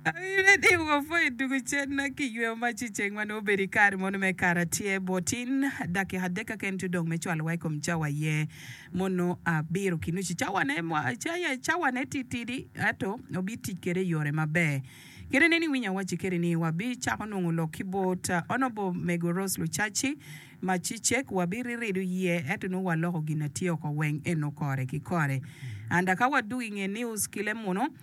Awibe ni wapwony i tugo cen ma kiyweyo mac i ceng ma nongo obedo i kare mono me Karacel. Bot tin dakika adek keken ci odong me cwalowa i kom cawa aye mono abiro ki nucu. Cawane, cawane titidi ento wabitic kwede i yore maber. Kit nen iwinyo awacci kwede ni wabicako nongo lok ki bot Honourable Mego Rose Lucaci ma ci cek wabirirido iye ento nongo waloko gin ma tye oko weng eno kore ki kore. Anda ka wadwogo i nge news ki lemuno.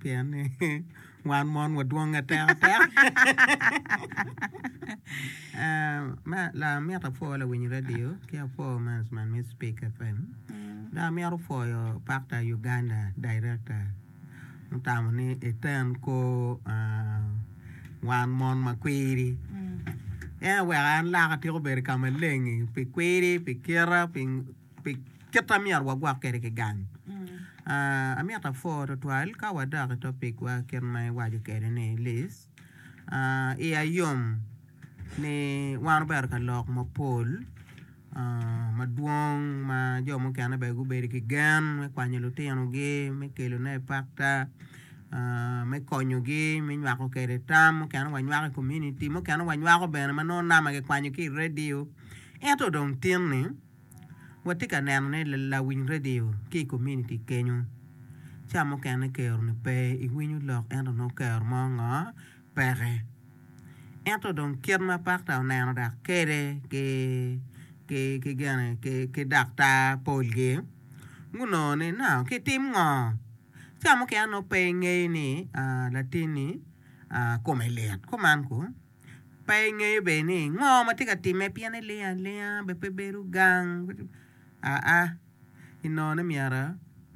Pien ni wan mon wadwonge tekateka. Amito apwo lawiny radio ki apwo maneman me Spik FM dok amito pwoyo Pakta Uganda Direkta mutamo ni eten kor wan mon ma kwiri. En oweko an laka atyeko bedo ka maleng-ngi pi kwiri, pi kite. pi kit ma myero wagwok kwede ki gang. Amito apwor twatwal ka wadok i topicwa kit ma iwaco kwede ni Liz. Iya yom ni wan obedo ka lok mapol madwong ma jo mukene bene gubedo ki gen me kwanyo lutinogi, me kelone i pakta, me konyogi, me nywako kwede tam. Mukene wanywako i komuniti, mukene wanywako bene ma nongo nama kikwanyo ki i redio. Ento dong tin ni. Watye ka neno ni lawiny redio ki i kominiti kenyu, ca mukene kero-ni pe iwinyo lok ento nongo kero mo ngo peke. Ento dong kit ma pakta oneno dok kede ki daktar polgi gunongo ni nongo kitim ngo. Ca mukene nongo pe ingeyo ni latinni kome lit, kuman kong. Pe ingeyo bene ni ngo ma tye ka timme pien ilingo alinga bene pe ibedo gang aa inongo myero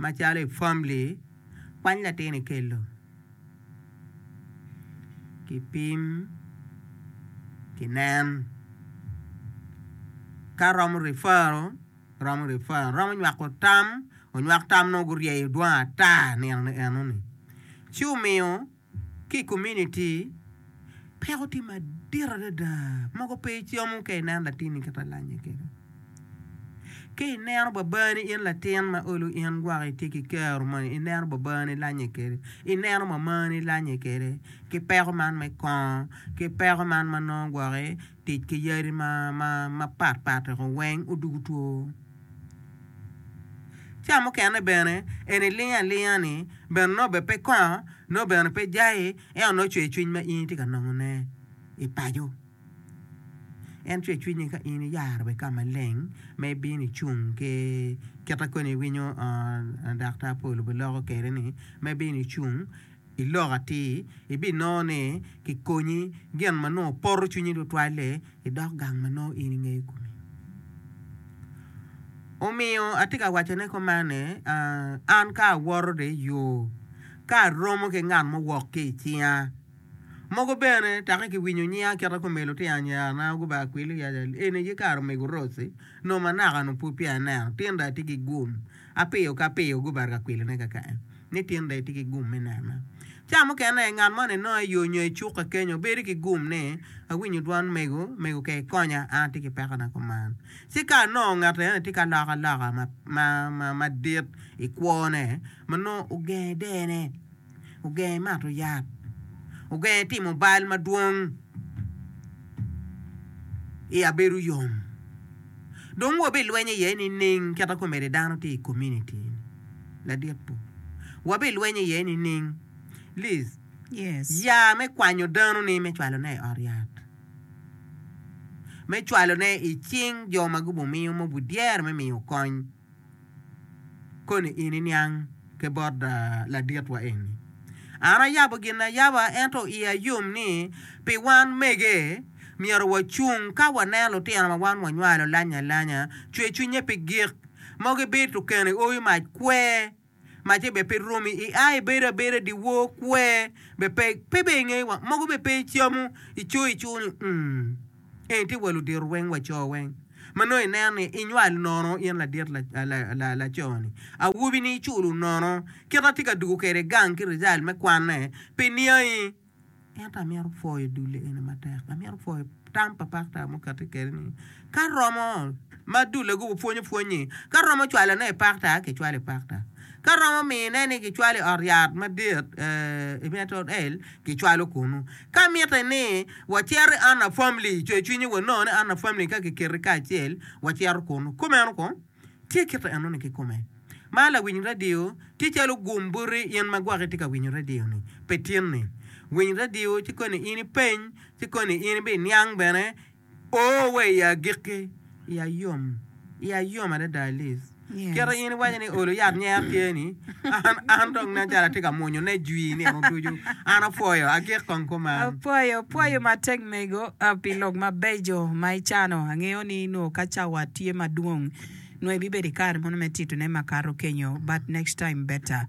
macalo i famili kwany latin ikelo kipim kinen ka romo rifaro romo rifaro romo nywako tam onywak tam nongo guryeyo dwong ata nino ni eno ni ci omiyo. Ki i kominiti, peko tye madit adada. Mogo pe icomo ka ineno latinni kit ma lanye kene. Ka ineno babani in latin ma olo in gwok itye ki kero moni, ineno babani ilanye kwede, ineno mamani ilanye kwede ki peko man me kongo ki peko man ma nongo gwoki tic ki yadi mapatpat weko weng odwogo two. Ca mukene bene en ilingo alinga ni bene nongo bene pe kongo, nongo bene pe jayi, ento nongo cwer cwiny ma in itye ka nongone i paco. En cwer cwinyi ka in iyaro wa i ka maleng ma ibino icung ki kit ma kony iwinyo daktar Paul obuloko kwede-ni ma ibino icung. I lok atir, ibinongo ni kikonyi gin ma nongo poto cwinyi tutwal-li idok gang ma nongo in ingeyo kome. Omiyo atye ka wacone kuman ni, An ka awoto dong i yo, ka aromo ki ngat mo wok ki i cinga. Mogo bene takke kiwinyo nyinga kit ma kumel otye anyerana guba akwili, eni aye kare omego Rose, nongo manaka-nu pud peya aneno. Tinda atye ki gum. Apiyo ka apiyo gubaro ka kwilone kaka en ni tyen rec tye ki gum me nena. Ca mukene, ngat mo ni nongo i yo nyo i cuka kenyo bedo ki gum ni, Awinyo dwan mego, mego ka ikonya, an atye ki pekona kuman. Ci ka onongo ngat eno ni tye ka loko aloka madit i kwone, ma nongo ogenge dene, Ogenge mato yat. Ogenge timo bal madwong. Iya bedo yom. Dong wabilweny iye nining kit ma komede dano tye i kominiti ladit-tu? Wabilweny iye nining? Liz, ya me kwanyo dano-ni me cwalone i ot yat, me cwalone i cing jo ma gubiwmiyo ma obidyero me miyo kony. Koni in iniang ki bot laditwa eni? An ayabo gin ayaba, ento iya yom ni pi wan mege, myero wacung ka waneno lutino ma wan wanywalo alanya alanya, cwer cwinye pi gik mogo ibed tukene owi mac kwer. Macce bene pe romi, i a ibedo abeda dyewor, kwer bene pe, pe bene ingeyo wa, mogo bene pe icamo, ico ico ni umm. Eni tye wa ludito weng, wa co weng. Ma nongo ineno ni inywal nono in ladit laco ni, awobi ni iculo nono, kit ma atye ka dugo kwede gang ki rizal me kwanne pe niangi. Ento amito pwoyo dulle eni matek. Amito pwoyo tam pa pakta ma okati kede ni ka romo ma dulle gubo pwonyo pwony ni ka romo cwalo ne i pakta ki cwalo i pakta ka romo mine ni ki cwalo i ot yat madit ee i meto el ki cwalo kunu ka mite ni wa cito i Anna family coyo cwinyi wa nongo ni Anna family ka ki keti kacel wa cito kunu kumeno kong. Tye kit ma enoni kikome. Mar lawiny radio tye calo gum buti in ma gwaki itye ka winyo radio-ni pe tinni. Winy radio ci koni in ipeny, ci koni in ibin iniang bene. O wa i agikki, iya yom, iya yom adada Alice. Kit ma in iwaco ni olo yat nyer tye-ni, An, an dong nen calo atye ka mwonyo nejwi nino ducu. An apwoyo, agik kong kuman. Apwoyo, pwoyo matek mego pi lok mabeco ma icano. Angeyo ni nongo ka cawa tye madwong nongo ibibedo i kare mono me titone makato kenyo but next time better.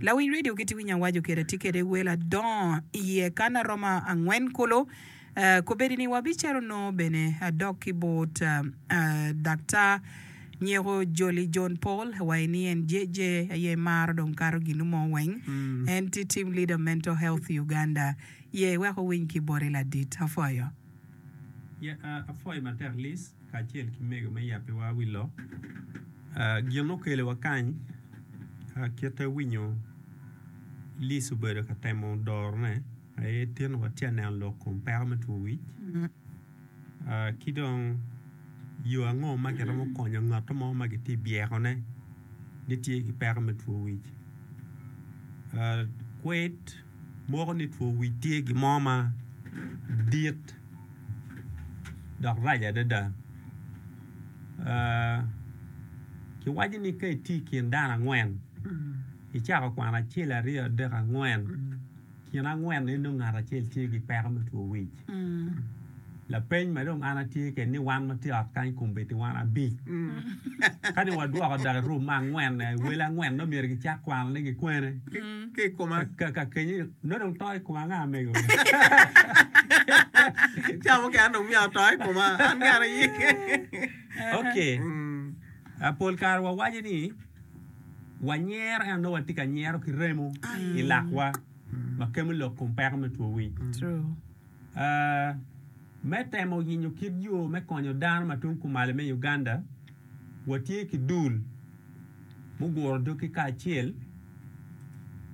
Lawiny radio kit winyo awaco kede atye kede wel adongo iye kan aromo angwen kulu. Kobedi ni wabicito nongo bene adok ki bot daktar nyeko joli John Paul wa i ni en JJ aye maro dong kato ginu mo weng en ti team leader mental health Uganda ye wek owiny ki boti ladit. Apwoyo. Yeah apwoyo matek Liz kacel ki mego me yabi wa wi lok gin okelo wa kany kite winyo Liz obedo ka temo doro ne. Aye tin watye ka neno lok kom peko me two wic, ki dong yo ango ma kiromo konyo ngat mo ma kitye ka byekone ni tye ki peko me two wic. Kwed moko ni two wic tye gin mo ma dit dok rac adada. Kiwaco ni ka itye i kin dano angwen, icako kwano acel, aryo, adek, angwen. Kin angwen en dong ngat acel tye ki peko me two wic. Lapeny ma dong an atye kede ni wan ma tye ot kany kombeddi wan abic. Ka dong wadwoko dok i rum ma angwen, wele angwen nongo myero gicak kwano ni gikwene. Ki i koma. Ka, ka kenye, nongo dong to i koma anga amego? Ca mukene an dong myero ato i koma, an kara aye. Okay. Pol kare wawaco ni. wanyero ento watye ka nyero ki remo i lakwa ma kemo lok kom peko me two wic. Me temo yenyo kit yo me konyo dano ma tung kumalo me Uganda, watye ki dul muguro doggi kacel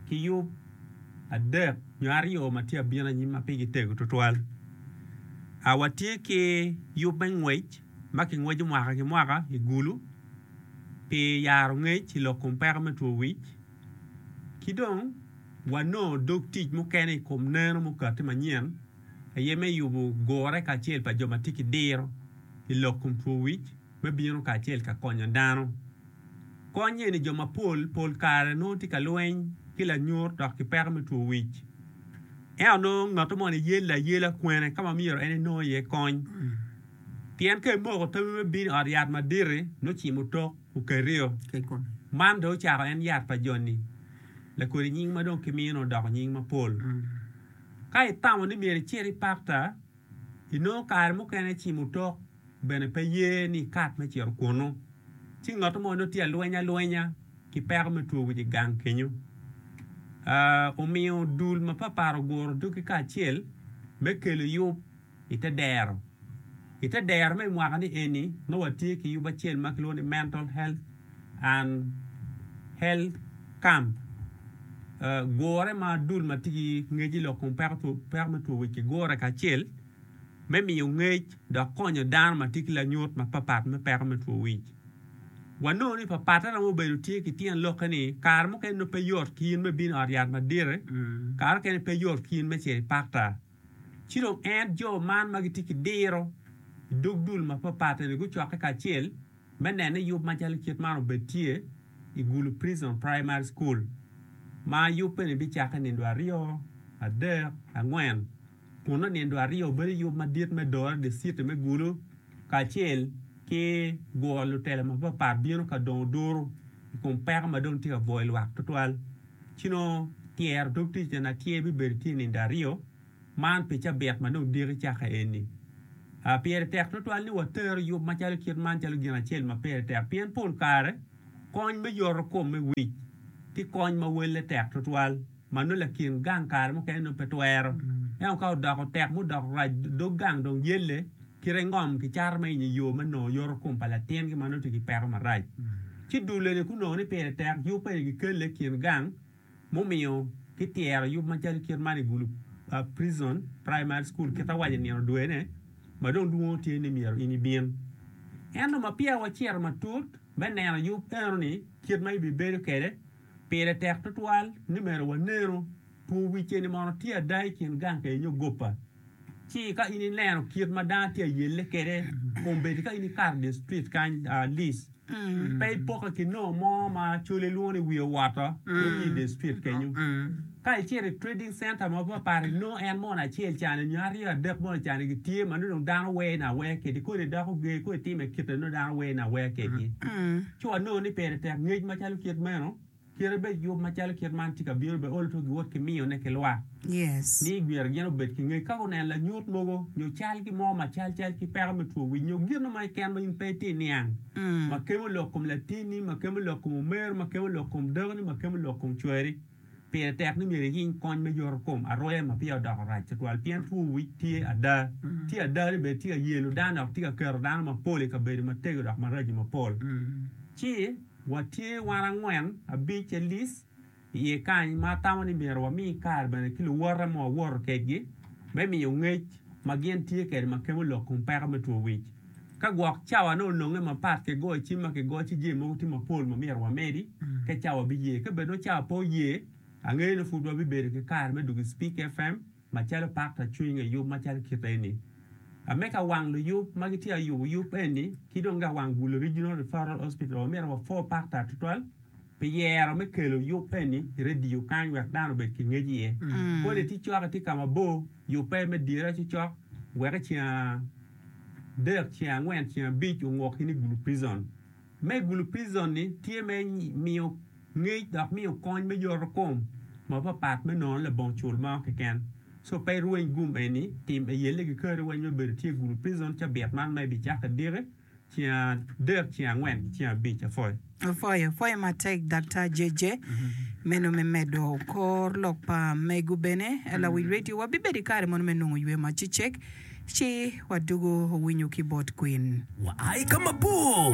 ki yub adek nyo aryo ma tye abino anyim ma pigi tego twatwal. Watye ki yub me ngwec ma kingweco mwaka ki mwaka i Gulu. pi yaro ngec i lok kom peko me two wic ki dong wanongo dog tic mukene i kom neno mukati manyen aye me yubo gure kacel pa jo ma tye ki diro i lok kom two wic me bino kacel ka konyo dano. Kony eni jo mapol pol kare nongo tye ka lweny ki lanyut dok ki peko me two wic. Ento nongo ngato moni yelle ayela kwene ka ma myero en enong iye kony. Pien ka imoko tammi me bino i ot yat madit-ti, nongo cim otok okerio. Man dong ocako en yat pa joni, lakodi nying ma dong kimino odoko nying mapol. Ka itamo ni myero icit i pakta, inongo kare mukene cim otok bene pe ye ni ikat me cito kunnu. Ci ngat mo nongo tye alweny alwenya ki peko me two wic i gang kenyo. Omiyo dul mapatpat oguro doggi kacel me kelo yub. i te dero. I te dero me mwaka ni eni nongo watye ki yub acel ma kilwongo ni Mental Health and Health Camp. Gure ma dul ma tye ki ngec i lok kom peko me two wic kigure kacel me miyo ngec dok konyo dano ma tye ki lanyut mapatpat me peko me two wic. Wanongo ni papatte romo bedo tye ki tyen lokke ni kare mukene nongo pe yot ki in me bino i ot yat madite, kare mukene pe yot ki in me cito i pakta. Ci dong en, jo man ma gitye ki diro i dog dul mapatpat-ni gucokke kacel me neno yub macalo kit man obed tye i Gulu Prison Primary School, ma yubbe-ni bicakke nindo aryo, adek, angwen, kun nongo nindo aryo bedo yub madit me doro diciti me Gulu kacel ki guro lutela mapatpat bino ka dongo duru i kom peko ma dong tye ka bwoyo lwak tutwal. Ci nongo tyero dog tic eni atyer bibedo tye nindo aryo, man pi cabit ma dong diki cakke eni. Pire tek twatwal ni watero yub macalo kit man calo gin acel ma pire tek pien pol kare kony me yoto kom me wic ki kony ma welle tek twatwal ma nongo lakin gang kare mukene nongo pe twero. Ento ka odoko tek ma odoko rac dog gang dong yelle, Kite ngom ki caro ma inyo yo me nongo yoto kom pa latin ki ma nongo tye ki peko marac ci dulene ku nongo ni pire tek yub pa inyo kelle i kin gang mumiyo ki tyero yub ma calo kit man i gulu pa Prison Primary School kit awaco nino dwene ma dong lwongo tye ni myero in ibin ento ma peya wa ciro matut me neno yub eno ni kit ma ibi bedo kede pire tek tutwal ni meno wa neno two wic eni mono tye ada i kin gang ka inyo goppa. Ci ka in ilero kit ma dano tye ayelle kwede, kombeddi ka in ikato dye street kany, Liz, pe ipokke ki noo mo ma col ilwongo ni wiye owoto, wun i dye street kenyu. Ka icito i trading center mapatpat, inongo en mono acel cani nyo aryo adek mono cani gitye ma nongo dong dano wer ni awer kwedgi, kodi idoko ger, kodi itimo kit ma nongo dano wer ni awer kwedgi. Ci wanongo ni pire tek ngec macalo kit meno. Kite bed yub macalo kit man tye ka bino, beolo to giwot ki miyone ki lwak. Ni myero gin obed ki ngec ka guneno lanyut mogo nyo cal ki mo ma cal cal ki peko me two wic nyo gino mo keken ma in pe itye niang ma kemo lok kom latini, ma kemo lok kom omeri, ma kemo lok kom dakoni, ma kemo lok kom cweri. Pire tek ni myero iyiny kony me yoto kom aroya ma peya odoko rac twatwal pien two wic tye ada. Tye ada ni bene tye ka yelo dano dok tye ka keto dano mapol i kabedo matego dok maraco mapol. Ci. Watye wan angwen, abic, Alice, i iye kany ma atamo ni myero wami kare bene ki luwote ma wawoto kedgi me miyo ngec ma gin tye kede ma kemo lok kom peko me two wic. Ka gwok cawa nongo olonge mapat ki goyo cim ma kigoyo ci jami mogo tye mapol ma myero wamedi ka cawa biye. Ka bed nongo cawa pe oye, angeyo ni pud wabibedo ki kare me dwogo i Speke FM. Macalo pakta cwiny nge yub macalo kite eni, ame ka wang luyub ma gitye ka yubo yub eni ki dong ka wang Gulu Regional Referral Hospital wa myero wa pho pakta tutwal pi yero me kelo yub eni i radio kany wek dano obed ki ngec iye. Kodi ti cok itye ka ma bor, yub pe me dyere cocok wek i ceng adek, ceng angwen, ceng abic ongok in i Gulu Prison. Me gulupizzone tye me miyo ngec dok miyo kony me yotokom mapapat me nono labongo cul mo keken. Co pe irweny gum eni, tim eyelle ki kare weny me bedo tye gulupizzone cabit man ma ibicako idiki ceng adek, ceng angwen ki ceng abic apwoyo. Apwoyo, apwoyo matek Daktar JJ. Meno me medo kor lok pa mego bene lawic radio wabibedo i kare mono me nongo ywe macecek ci wadwogo winyo ki bot kwin. Wa i ka mabor.